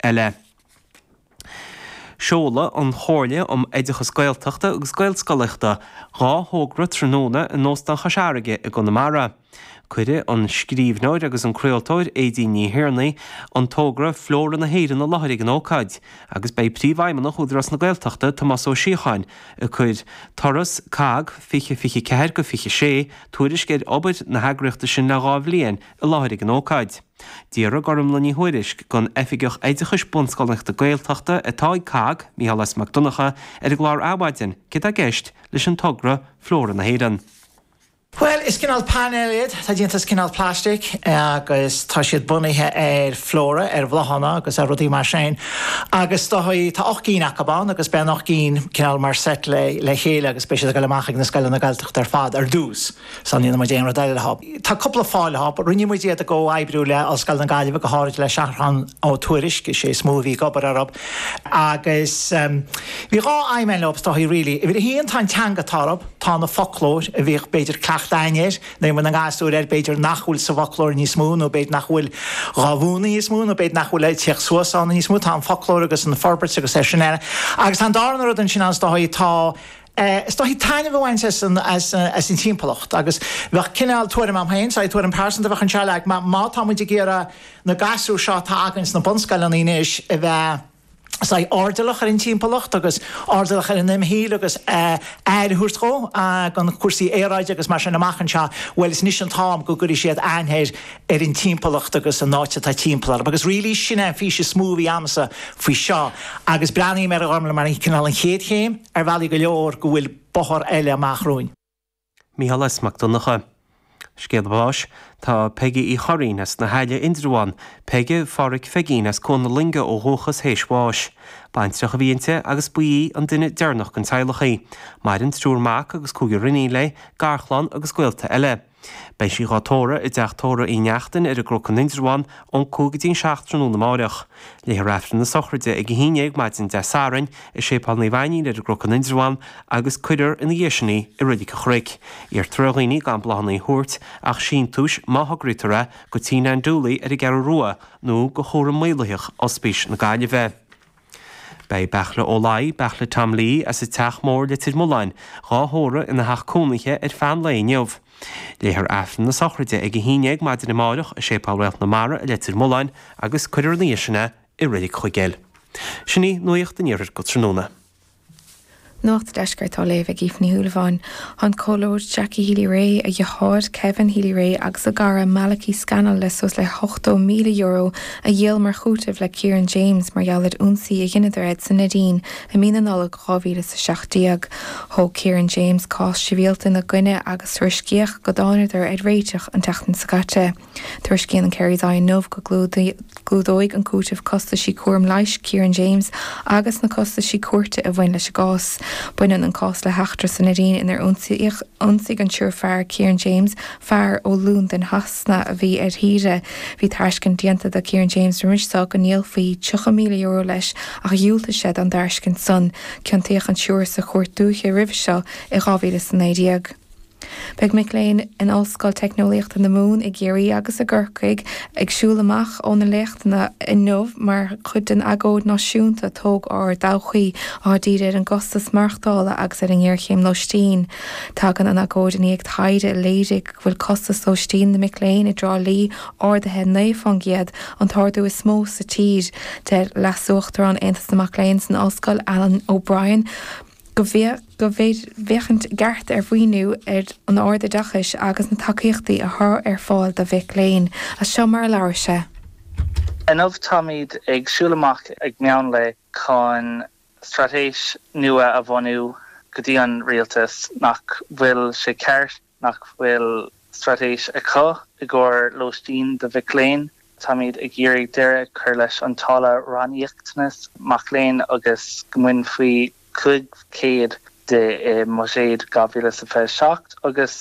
eile. Seolfaidh an Chomhairle um Oideachas Gaeltachta agus Gaelscolaíochta dhá thogra tráthnóna in Óstán Chois Fharraige i gConamara. Cuirfidh an scríbhneoir agus an craoltóir Aedín Ní Thiarnaigh an togra Flóra na hÉireann i láthair ag an ócáid agus beidh Príomhfheidhmeannach Údarás na Gaeltachta, Tomás Ó Síocháin ag cur Turas COGG 2024-26, tuairisc ar obair na heagraíochta sin le dhá bhliain, i láthair ag an ócáid. D'fhiafraigh Gormfhlaith Ní Thuairisg den Oifigeach Oideachais Bunscolaíochta Gaeltachta atá ag COGG, Micheál S. Mac Donnacha, ar an gclár Adhmhaidin céard atá i gceist leis an togra Flóra na hÉireann. Bhuel, is cineál painéal iad, atá déanta as cineál plaistic agus tá siad bunaithe ar flóra, ar bhláthanna agus ar rudaí mar sin agus tá ocht gcinn acub ann agus beidh an ocht gcinn cineál mar seit le chéile agus beidh siad ag dul amach ag na scoileanna Gaeltachta ar fad ar dtús. Só níl muid aon rud eile leothub. Tá cúpla fáth leothub. Rinne muid iad i gcomhoibriú le Ollscoil na Gaillimhe, go háirid le Seathrán Ó Tuairisg, is é is mó a bhí ag obair orthub. Agus bhí dhá aidhm eile leothub, is dóigh, really. Uimhir a haon, tá an teanga atá orthub, tá an foclóir a bhíodh b'fhéidir cleachtadh againn air, nó aon bhfuil na ngasúir air b'fhéidir nach bhfuil sa bhfoclóir níos mó, nó b'fhéidir nach bhfuil dhá mhúineadh níos mó, nó b'fhéidir nach bhfuil ag tíocht suas ann níos mó, tá an foclóir agus an forbairt agus é sin ann. Agus tá an darna rud ansin ann, is dóigh, tá. Is dóichí taitneamh a bhaint as an timpeallacht agus bheadh cineál tuairim agam féin, saghas tuairim pearsanta a bheadh anseo, like má tá muid ag iarraidh na gasúir seo atá againn sna bunscoileanna anois a bheith saghas airdeallach ar an timpeallacht agus airdeallach ar an imshaol agus aire a thabhairt dhó gan cúrsaí aeráide agus mar sin amach anseo, bhuel is anois an t-am go gcuirfidh siad aithne ar ar an timpeallacht agus an áit atá timpeall orthu agus really sin é an fís is mó a bhí agamsa faoi seo agus breathnaím air mar an cineál an chéad chéim. ar bhealaí go leor go bhfuil bóthar eile amach romhainn. Micheál S. Mac Donnacha. Scéal Báis Tá Peige Uí Churraoin as na hAille, Indreabhán, Peige Phádraig Pheigín, as Cuan na Loinge ó dhúchas théis bháis. Baintreach a bhí inti agus ba í an duine deireanach den teaghlach í. Maireann triúr mac agus cúigear iníon léi, garchlann agus gaolta eile. Beidh sí dhá tórramh i dTeach Tórraimh Uí Neachtain ar an gCnoc in Indreabhán ón cúig go dtí an seacht tráthnóna amáireach. Léifear Aifreann na Sochraide ag a haon déag maidin Dé Sathairn i Séipéal Naomh Ainnín ar an gCnoc in Indreabhán agus cuirfear ina dhiaidh sin í i Reilig an Chnoic. Iarrtar ar dhaoine gan bláthanna a thabhairt ach síntiúis má thograítear é do Tigh Nan Dooley ar an gCeathrú Rua nó do chúram maolaitheach Ospís na Gaillimhe. Beidh Beairtle Ó Laoi, Beairtle Tom Lee as an Teach Mór, Leitir Mealláin, dhá thórramh ina theach cónaithe ar feadh an lae inniu. Léifear Aifreann na sochraide ag a haon déag maidin amáireach i Séipéal Réalt na Mara i Leitir Mealláin agus cuirfear ina dhiaidh sin é i Reilig Chuigéil. Sin í nuacht an iarthair go tráthnóna. Nuacht Deiscirt á léamh ag Aoife Ní Shúilleabháin. Tá an Comhairleoir Jackie Healy-Rae, a dheartháir Kevin Healy-Rae agus a gcara Malachy Scannell le suas le €80,000 a dhíol mar chúiteamh le Kieran James mar gheall ar ionsaí a dheineadar air sa Neidín i mí na Nollag 2017. Thóg Kieran James cás sibhialta ina gcoinne agus tuairiscíodh go dtáineadar ar réiteach an tseachtain seo caite. Tuairiscíonn an Kerry's Eye inniu go gclúdóidh an cúiteamh costaisí cúraim leighis Kieran James agus na costaisí cúirte a bhain leis an gcás. Baineann an cás le heachtra sa Neidín inar ionsaigh an triúr fear Kieran James, fear ó Londain Shasana a bhí ar saoire. Bhí tairiscint déanta do Kieran James roimis so go ndíolfaí €30,000 leis ach dhiúltaigh sé don dtairiscint san. Ciontaíodh an triúr sa Chúirt Dúiche roimhe seo i 2019. Beidh mic léinn in Ollscoil Teicneolaíochta na Mumhan i gCiarraí agus i gCorcaigh ag siúl amach ó na léachtanna inniu mar chuid den agóid náisiúnta 'Tóg Ár dTodhchaí', atá dírithe ar an gcostas maireachtála agus ar an ngéarchéim lóistín. Tagann an agóid i ndiaidh taighde a léirigh go bhfuil costas lóistín na mic léinn i dTrá Lí ardaithe 9 fán gcéad, an t-ardú is mó sa tír. Deir Leasuachtarán Aontas na Mac Léinn san ollscoil, Alan O'Brien, go bhféadfaí féachaint i gceart ar mhaoiniú an ardoideachais agus na tacaíochtaí a chur ar fáil do mhic léinn, is seo mar a labhair sé. Inniu táimid ag siúl amach ag meán lae chun straitéis nua a bhunú go dtí an rialtas, nach bhfuil sé ceart? Nach bhfuil straitéis acu i gcomhair lóistín do mhic léinn? Táimid ag iarraidh deireadh a chur leis an táille ranníoctanas mac léinn agus go mbainfí 500 de i mbuiséad 2027 agus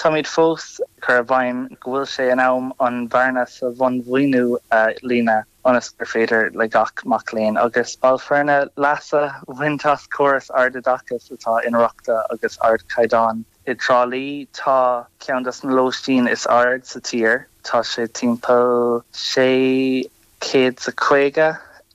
táimid fós ag cur i bhfeidhm go bhfuil sé in am an bhearna sa bhunmhaoiniú a líonadh ionas gur féidir le gach mac léinn agus ball foirne leas a bhaint as córas ardoideachais atá inrochtana agus ardchaighdeáin. I dTrá Lí tá ceann des na lóistín is airde sa tír, tá sé timpeall sé chéad 's a caoga i